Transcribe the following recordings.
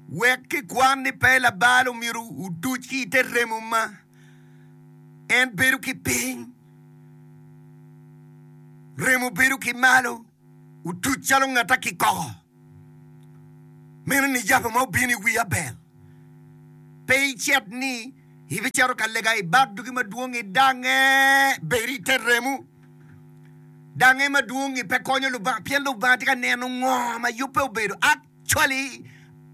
Wek kikwan ni pe labal omyero otuc ki i te remo ma en bedo ki piny, remo bedo ki malo otuc calo ngat a kikoko. Meno ni yabo ma obino i wi Abel. Pe icit ni ibicito ka lega ibak dugi madwong i dange, bedo i te remo. Dange madwong-ngi pe konyo Lubanga, pien Lubanga tye ka neno ngo ma yubbe obedo. cwali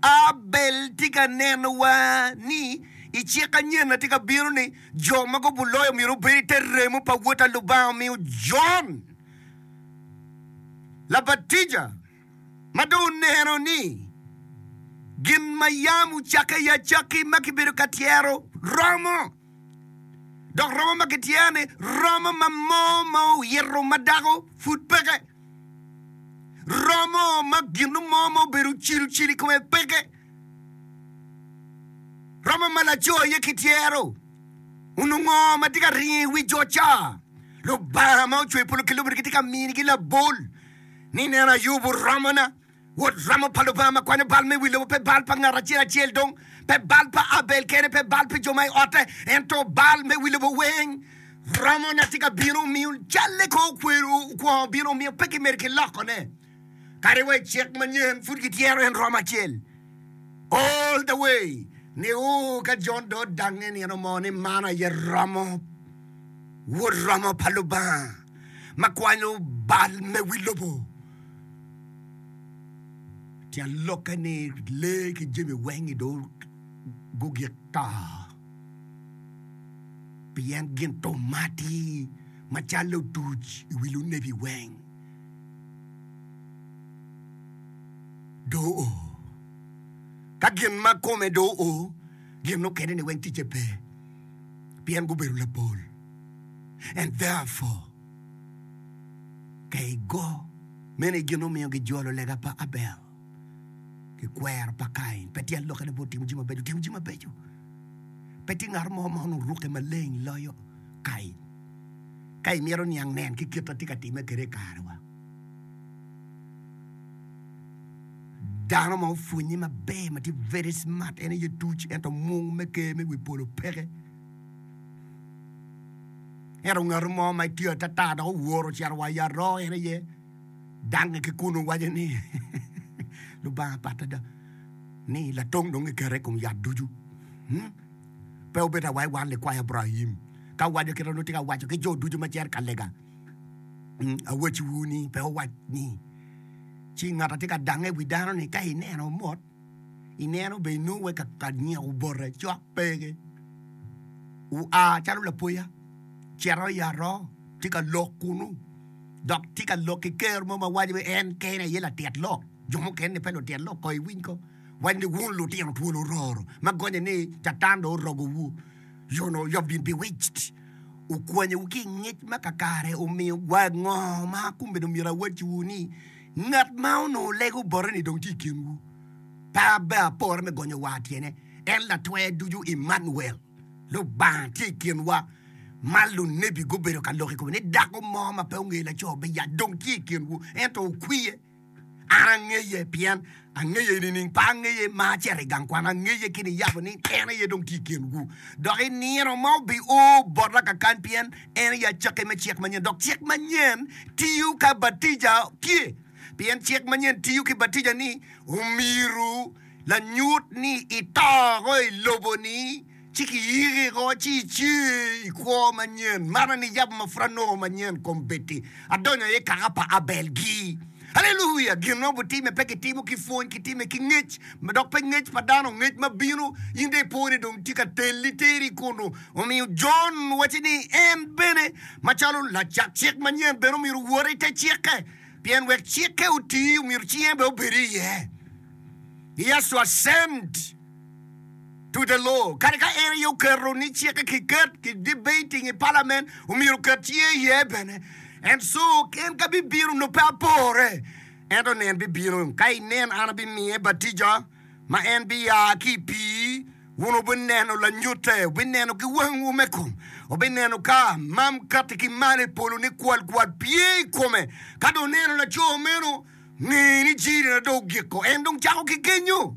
Abel tye ka nenowa ni i cik anyen na tye ka bino ni jo ma gubu loyo myero gubed i te remo pa Wod a Lubanga omiyo Jon Labatija ma dong oneno ni gin ma yam ocakke i acakki ma kibedo ka tyero romo. Dok romo ma kityer-ni romo ma moo ma oyito ma dako pud peke. Romo ma gino mo ma obedo cilcil i kome peke. Romo ma laco aye kityero. Onongo ma tye ka ringo i wi jo ca. Lubanga ma ocwe polo ki lobo-ni gitye ka minigi labol ni nen ayubo romona. Wod ramo pa Lubanga ma kwanyo bal me wi lobo pe bal pa ngat acel acel dong, pe bal pa Abel kene, pe bal pi jo ma i otte, ento bal me wi lobo weng. Ramo na tye ka bino omiyo calle kong okwero kwo obino omiyo pe kimedo ki lokone. Kadi wa i cik manyen pud kityero en romo acel. All the way ni o ka John do odange nino mo ni man aye ramo, Wod ramo pa Lubanga ma kwanyo bal me wi lobo. Tyen lokke ni lee ki jami weng i dong gugik to, pien gin thum ma atir macalli otuc i wi lunebi weng. Dong o, ka gin ma kome dong o, gin mukene-ni weng ticce pe, pien gubedo lapol. And therefore. Ka i go, mene gin mumiyo gijolo lega pa Abel ki kwero pa Kain. Pe tye aloka labot timo jami mabeco. Timo jami mabeco. Pe tye ngat mo ma onongo rukke maleng loyo Kain. Ka imito niang, nen ki kit atye ka time kede i karewa. Dano ma opwonye maber ma tye very smart en aye tuc ento mung me ker me wi polo peke. Ento ngat mo ma tye atata dok owor ocito wa i aroo en aye dange ki kun owaco ni, Lubanga pat ada ni latong dong kikete i kom yat ducu. Hmm? Pe obedo awai wan likwayo Abraim. Ka owaco kit ma nongo tye ka waco ki jo ducu ma cito ka lega, hmm, awacciwu ni pe owac ni ci ngat atye ka dange i wi dano ni ka ineno mot ineno be inongo wek ka nyeko obote cok pe gi oa calo lapoya cito i aroo tye ka lok kunu dok tye ka lok ki ker mo ma waco ni en kene aye latit lok jo mukene ni pe lutit lok ko iwiny ko waco ni wun lutino twol ororo ma gonye ni catan dong orogowu you know you have been bewitched okwanyowu ki i ngec ma kakare omiyo wa ngo ma kun bene omyero awacciwu ni Ngat ma onongo lego boteni dong tye i kinwu. Pe abbe apore me gonyo war tyene, en Latwer Ducu Emmanuel, Lubanga tye i kinwa. Ma lunebi gubedo ka loko i kome ni dako mo ma pe ongeyo laco biyat dong tye i kinwu, ento okwiye. An angeye, pien Angeye nining? Pe angeye, ma acito i gang kwan, angeye ki niyabo ni en aye dong tye i kinwu. Dok i nino ma obio bota kakan, pien en aye acakki me cik manyen, dok cik manyen tiyo ka batija tye, pien cik manyen tiyo ki batija ni omyero lanyut ni ito woko i lobo-ni. Ci kiyiki oko, ci ici i kwo manyen. Mana ni yabo ma pud anongo manyen kom bed-di, adonyo aye i kaka pa Abel-gi. Haleluya! Gin ma obitimme pe kitimo ki pwony, kitime ki ngec, dok pe ngec pa dano, ngec ma bino. In dong ipo ni dong tye ka telli teri kunu. Omiyo Jon wacci ni en bene macalo lacak cik manyen bene omyero owot i te cikke, pien wek cikke oti, omyero ci en bene obed iye. Yecu ascend. Tute loo, kadi ka en aye oketo ni cikke kiket ki debating i palamen, omyero oket cinge iye bene. En co, en ka bibino nongo pe apore, ento nen bibino, ka inen an abimiye batija ma en biya ki i pii, wun wubineno lanyute, wubineno ki wangwu me kom, wubineno ka mam kati ki malo i polo ni kwalkwal pye i kome. Ka dong oneno laco meno, nge ni jiri na dong ogiko, en dong cako ki kenyo.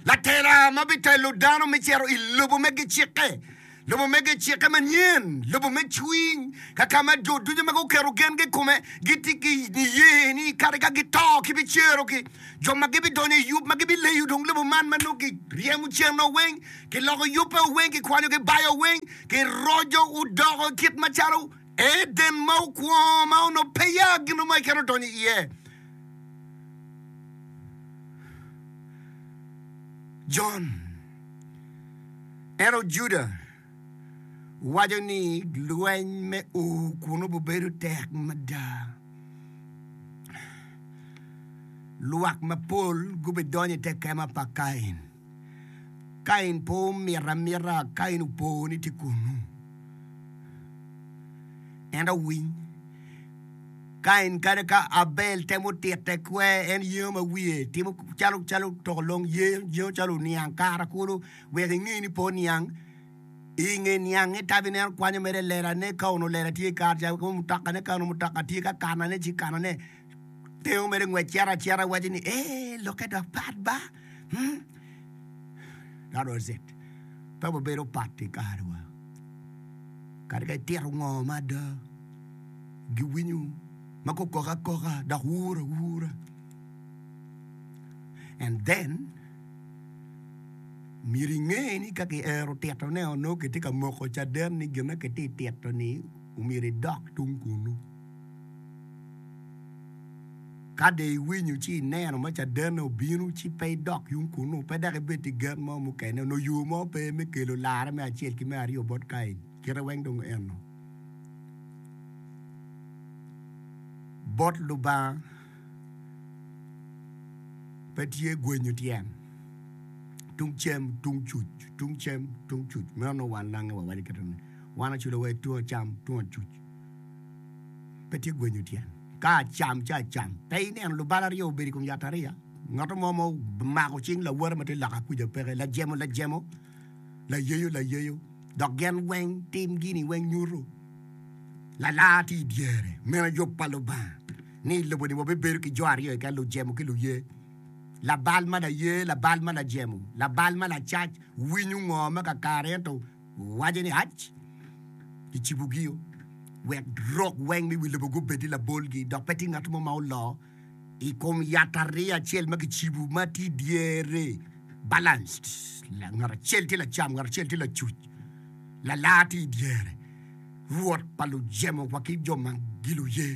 Latela ma bitelo dano me cito i lobo me gicikke, lobo me gicikke manyen, lobo me cwiny, ka ka ma jo ducu ma guketo gengi i kome gitye ki niye ni kadi ka gito kibicerogi. Jo ma gibidonyo i yub ma gibileyo dong lobo man ma nongo kiryemo cen-noo weng, kiloko yubbe-o weng, kikwanyo kibao weng, kiroco odoko kit macalo Eden ma okwongo ma onongo pe ya gin mo keken odonyo iye. Jon, ento Juda waco ni lweny me ur kuno bibedo tek mada. Lwak mapol gubidonyo i te kema pa Kain. Kain pe omito amita, Kain opo ni tye kunnu. Ento winy, Kain kadi ka Abel temo tite kwer, en yengo ma wiye timo calo calo toko long, yengo calo oniang kara kulu wek inge ni pe oniang. I nge niange tabi ne en kwanyo mere lelane ka onongo lela tye kara ca, mutokane ka onongo mutoka tye ka kanane ci kanane. Te omere ngwec cito acita iwaco ni, ee, lokke dok pat ba. Hmm? That was it. Pe wabedo pat i karewa. Kadi ka itito ngo mada, giwinyo ma gukok akoka dok wur awura. And then, myero inge ni ka kiero titone onongo kitye ka moko caden ni gin ma kitye tito-ni omyero idok tung kunu. Ka dong iwinyo ci ineno ma caden-ni obino, ci pe idok yung kunnu, pe dok ibed ki gen mo mukene. Onongo yo mo pe me kelo larre me acel ki me aryo bot Kain. Kite weng dong enno bot Lubanga. Pe tye gwenyo tyen tung cem, tung cuc, tung cem, tung cuc. Meno nongo wan lange wawaco kite ni, wan oculowa i tung acam, tung acuc. Pe tye gwenyo tyen. Ka acam ci acam. Pe ineno lubalo aryo obedo i kom yatariya? Ngat mo ma omako cing lawote ma tye loka kuca peke, lajemo lajemo, layeyo layeyo, dok gin weng timgini weng nyuto lalar tye i dyere. Meno yub pa Lubanga ni i lobo-ni wabibedo ki jo aryo keken, lujemo ki luye. Labal ma laye, labal ma lajemo, labal ma lacac winyo ngo me kakare ento Wace ni, Ac, kicibogio, wek rok weng me wi lobo gubed i labolgi, dok pe tye ngat mo ma oloo i kom yat ariya acel ma kicibo ma tye i dyere, balanced, ngat acel tye lacam, ngat acel tye lacuc, lalar tye i dyere, Rwot pa lujemo wa ki jo ma giluye,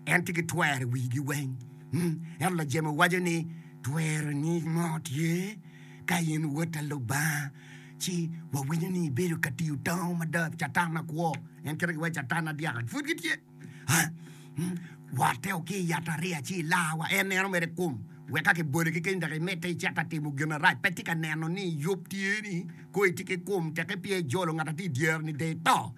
en tye ki twero i wigi weng. Hmm, ento lajemo waco ni, Tweroni mo tye ka in Wota Lubanga? ci wawinyo ni ibedo ka tiyo tango mada ki Catan ma kwo, en kite ki wai Catan adyaka pud gitye. Wate o ki i yatariya ci ilawa, en neno mere kum wek ka kibole kekeni dok imedde icit ka timo gin marac. Pe tye ka neno ni yub tye ni koo itye ki kum teke peya ijolo ngat atye i dyere ni de ito.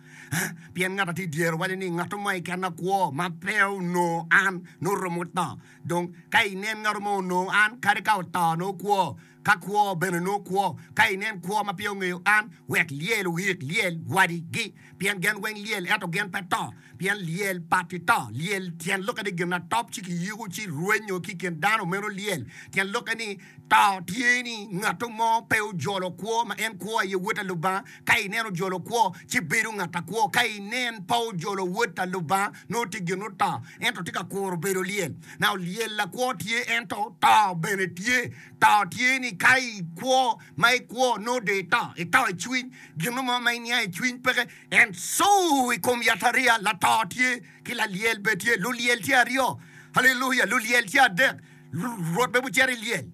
Pien ngat atye i dyere waco ni ngat mo keken akwo ma pe onongo an nongo romo to. Dong ka inen ngat mo onongo an kadi ka oto nongo kwo. Ka kwo bene onongo kwo, ka inen kwo ma pe ongeyo an, wek lyel oyik lyel wadigi, pien gen weng lyel ento gen pe to, pien lyel pa ti to. Lyel tyen lokke ni gin atop ci kiyiko ci rwenyo ki kin dano meno lyel. Tyen lokke ni to tye ni ngato mo pe ojolo kwo ma en kwo aye wod ta Lubanga, ka inen ojolo kwo ci bedo ngat akwo, ka inen pe ojolo wod ta Lubanga nongo ti gin oto, ento ti ka kuro bedo lyel. Nao lyel lakwo tye ento to bene tye. To tye ni ka i kwo ma i kwo nongo dong ito, ito i cwiny, gin mo ma iniang i cwiny peke. En cu i kom yatariya, lato tye ki lalyel bene tye, lulyel tye aryo, haleluya, lulyel tye adek, Rwot bene gucito i lyel,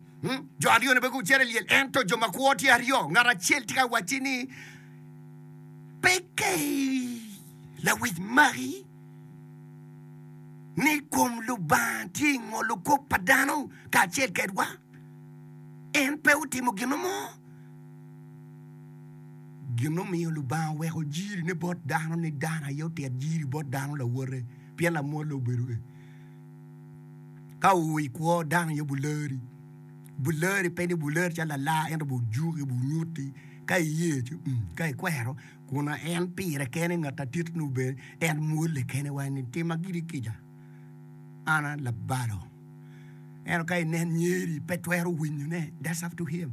jo aryo-ni bene gucito i lyel, ento jo ma kwo tye aryo, ngat acel tye ka wacci ni, Peke lawic magi. ni kom Lubanga tye i ngolo kop pa dano kacel kedwa, en pe otimo gin mo. Gin omiyo Lubanga oweko jirine bot dano ni dano aye otit jiri bot dano lawote, pien lamwolle obedo ni ka oo i kwo dano aye buleri. Buleri pe ni buleri calo lala ento bujuki, bunyuti ka iye, ka ikwero. kun en pire kene ngat atit nio bene en mwole kene wa ni tima gidi kica an a labalo ento ka inen nyeri pe twero winyone that's up to him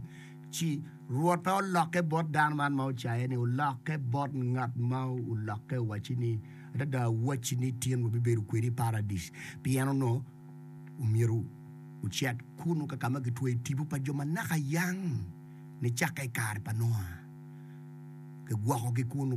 ci rwot pe olokke bot dano man ma ocaye ni olokke bot ngat ma olokke owaci ni adada awaci ni tin wa bibedo kwedi i paradis pien ono omyero ocet kunu kakama kitweyo tipo pa jo manaka yang nicakke i kare pa Nua, kigwokogi kunnu.